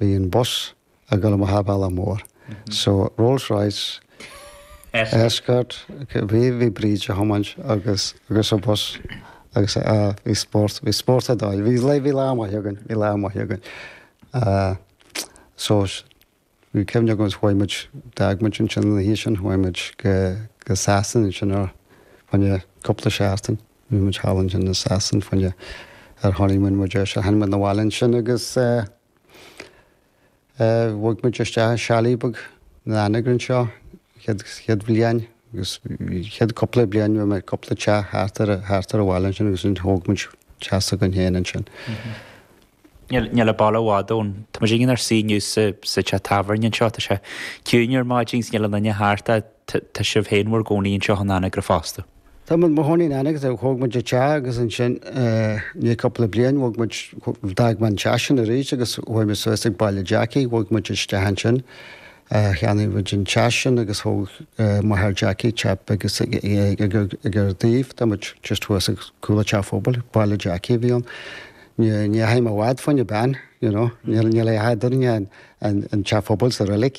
Bhí an bus ag dul amach an bealach mór. So Rolls Royce, Escort, bhí, bhí Bríd ag tiomáint agus, agus a' bus agus a, bhí spórt, bhí spórt ar dóigh. Bhí lae, bhí lá maith againn, bhí lá maith againn. So bhí cuimhne agam is chuaigh muid, d'fhág muid ansin an oíche sin, chuaigh muid go, go Sasain ansin fá choinne cúpla seachtain. Bhí muid thall ansin i Sasain fá choinne ár honeymoon, is tháinig muid 'na bhaile ansin agus eh. Bhog muid isteach i chalet beag in Anagaire anseo an chéad bhliain agus an chéad cúpla bliain bhí mé i gcúpla teach thart ar thart ar an bhaile ansin agus ansin thóg muid teach s'againn féin ansin. Níl an baile i bhfad ón Tá muid inár suí inniu sa teach tábhairne anseo tá sé ciúin ar maidin agus níl aon duine thart Tá sibh féin bhur gcónaí anseo in Anagaire fosta? Tá mé i mo chónaí in Anagaire, thóg muid an teach agus ansin i ndiaidh cúpla bliain bhog muid, d'fhág mé an teach sin arís agus chuaigh muid suas ag Baile Jackie, bhog muid isteach ansin, cheannaigh muid an teach sin agus thóg máthair Jackie teach beag ag ár dtaobh tá muid just thuas ag cúl an teach phobail, Baile Jackie a bhí ann. Ní fhaighim i bhfad fáinne bean, you know, níl a dhath eadrainn ach teach phobail is an reilig.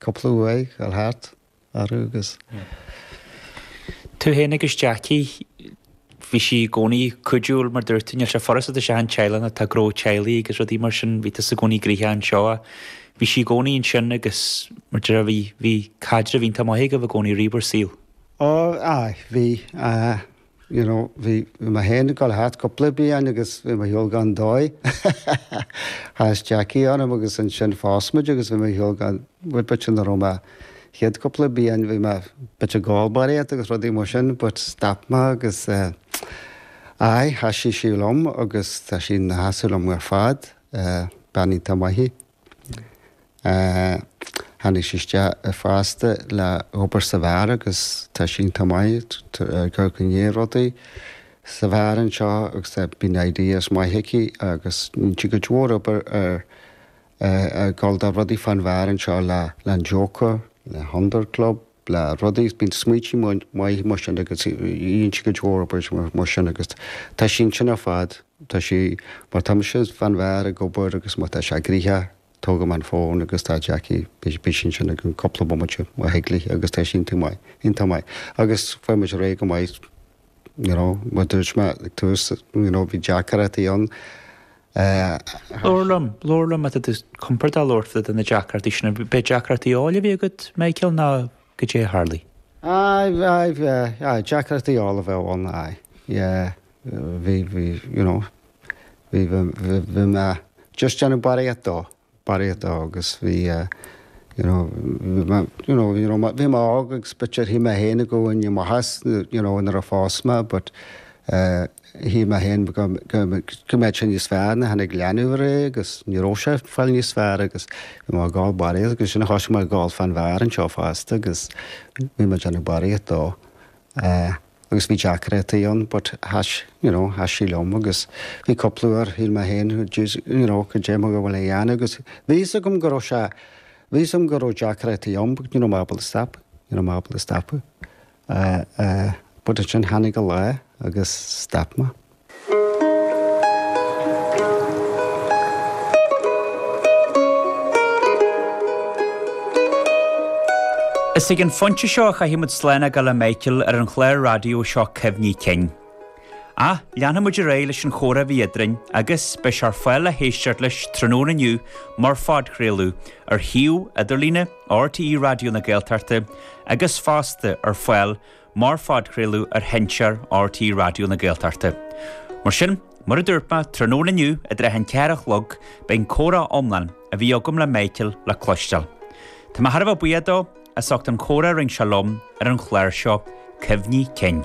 Cúpla uair ag dul thart orthu agus. Tú fhéin agus Jackie, bhí sí i gcónaí cuidiúil mar dúirt tú, níl sé furasta d'achan teaghlach atá gnó teaghlaigh agus rudaí mar sin, bhí tusa i gcónaí gnoitheach anseo a. Bhí sí i gcónaí ansin agus mar deireadh bhí, bhí caidreamh iontach maith agaibh i gcónaí i rith bhur saoil. Ó, aye, bhí, aye. You know, bhí mé féin ag dul thart cúpla bliain agus bhí mo shaol gan dóigh. Chas Jackie orm agus ansin phós muid agus bhí mo shaol gan bhfuil bit sin orm. An chéad cúpla bliain bhí mé bit ag ól barraíocht agus rudaí mar sin but stop mé agus aye sheasaigh sí liom agus tá sí ina seasamh liom ar fad. Bean iontach maith í. Tháinig sí isteach fosta le hobair sa bheár agus tá sí iontach maith ag amharc i ndiaidh rudaí sa bheár anseo agus bíonn ideas maith aici agus bíonn sí go leor ag obair ar ag dul do rudaí fán bheár anseo le An Joker, le Hundred Club. le rudaí, bíonn smaointe maithe mar sin agus, inscne Eorpach is rudaí mar sin agus tá sí ansin ar fad, tá sí, má tá mise fán bheár ag obair agus má tá sé gnoitheach, tógaim an fón agus tá Jackie, beidh sí ansin i gceann cúpla bomaite má thig léi agus tá sí iontach maith, iontach maith agus faigheann muid ar aghaidh go maith, you know, mar dúirt mé ag tús, you know, bhí deacarachaí ann. Ach. Labhair liom, labhair liom má tá tú compordach labhairt fá dtaobh de na deacrachtaí sin, arbh é deacrachtaí óil a bhí agat, Michael, nó goidé a tharlaigh? Aye, aye, yeah, aye, deacrachtaí óil a bhí ann, aye, yeah, bhí, bhí, you know, bhí, bhí, bhí, bhí mé just déanamh barraíocht dó, barraíocht agus bhí you know you know you know bhí mé óg agus but sure shíl mé féin i gcónaí i mo theach you know nuair a phós mé but eh shíl mé féin go go go mbeadh sé níos fearr na tháinig leanbh air eh agus ní raibh sé ag fáil níos fearr agus bhí mé ag ól barraíocht agus sin a thosaigh mé ag gabháil fán bheár anseo fosta agus bhí mé ag déanamh barraíocht dó eh agus bhí deacrachtaí ann but sheas you know sheas sí liom agus bhí cúpla uair shíl mé féin jeez you know caidé mar atá mé ag gabháil a dhéanamh agus bhí fhios agam go raibh sé bhí fhios agam go raibh deacrachtaí ann but ní raibh mé ábalta stop ní raibh mé ábalta stop uh, uh, but ansin tháinig an lá agus stop mé. Is ag an phointe seo a chaithfimid slán a ghabháil le Michael ar an chlár raidió seo Cuimhní Cinn. Ach, leanfaimid ar aghaidh leis an chomhrá a bhí eadrainn, agus, beidh sé ar fáil le héisteacht leis tráthnóna inniu mar phodchraoladh, ar shuíomh idirlíne RTÉ Raidió na Gaeltachta, agus fosta, ar fáil, mar phodchraoladh ar sheinnteoir RTÉ Raidió na Gaeltachta. Mar sin, mar a dúirt mé, tráthnóna inniu i dtrátha an ceathair a chlog, beidh an comhrá iomlán a bhí agam le Michael le cloisteáil. Tá mé thar a bheith buíoch dó as ucht an chomhrá a rinne sé liom ar an chlár seo, Cuimhní Cinn.